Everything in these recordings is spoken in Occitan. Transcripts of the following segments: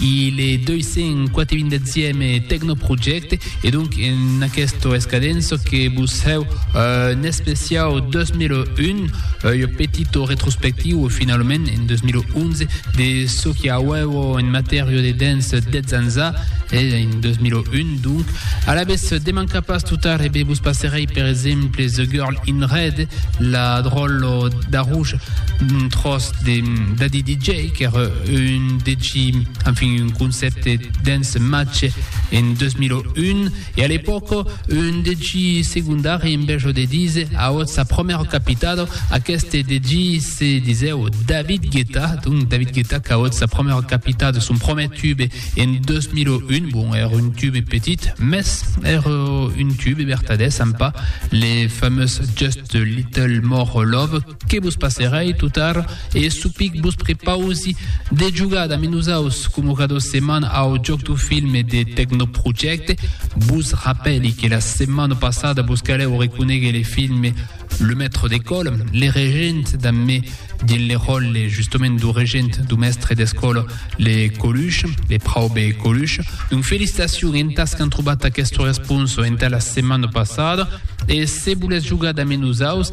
i le 247 è Tecnoprojecte e donc en aquesto escadenço que vos hèu un especiau 2001, ua petito retrospectiua finalament en 2011 de çò que auèvo en matèria de dens 10 ans a e en 2001 donc. Alavetz demanca pas totar e be vos passerèi per exemple The Girl in Red, la dròllo d'arruja d'un tròç de Daddy DJ, qu'ère un deci, enfin un concèpte dens Matge en 2001, e a l'epòca un deci segondari en bèjo de díser auot sa promèra capitada, aqueste deci se disèu David Guetta, donc David Guetta qu'auot sa promèra capitada son promèr tube en 2001, bon ère un tube petit, mès ère un tube vertadèr, sampa le famós Just a Little More Love, que vos passerai totar e supic vos prepausi de jugar damb nosaus coma cada setmana au joc du film e de Tecnoprojecte. Vos rapèli que la setmana passada vos calèu reconéguer le film Le Maître d'Ecole, le regent damb me dins le ròle justament du regent du mèstre d'escòla le Coluche, le praube Coluche. Donc felicitacion entas qu'an trobat aquesta responsa entà la setmana passada e se volètz jugar damb nosaus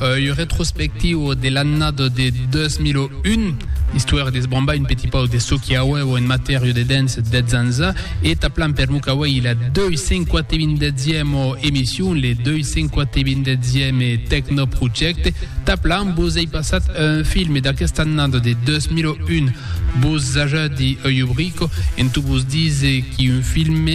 Œil retrospectiu de l'annada de 2001, istoèra d'esbrambar un petit pauc de çò qu'i auèva en matèria de dance dètz ans a, e taplan per lo cauèi la 287ema emission, le 287eme Tecnoprojecte, taplan vos ei passat un film d'aquesta annada de 2001, vos ajadi œil obrico, en tot vos dise qu'i un film,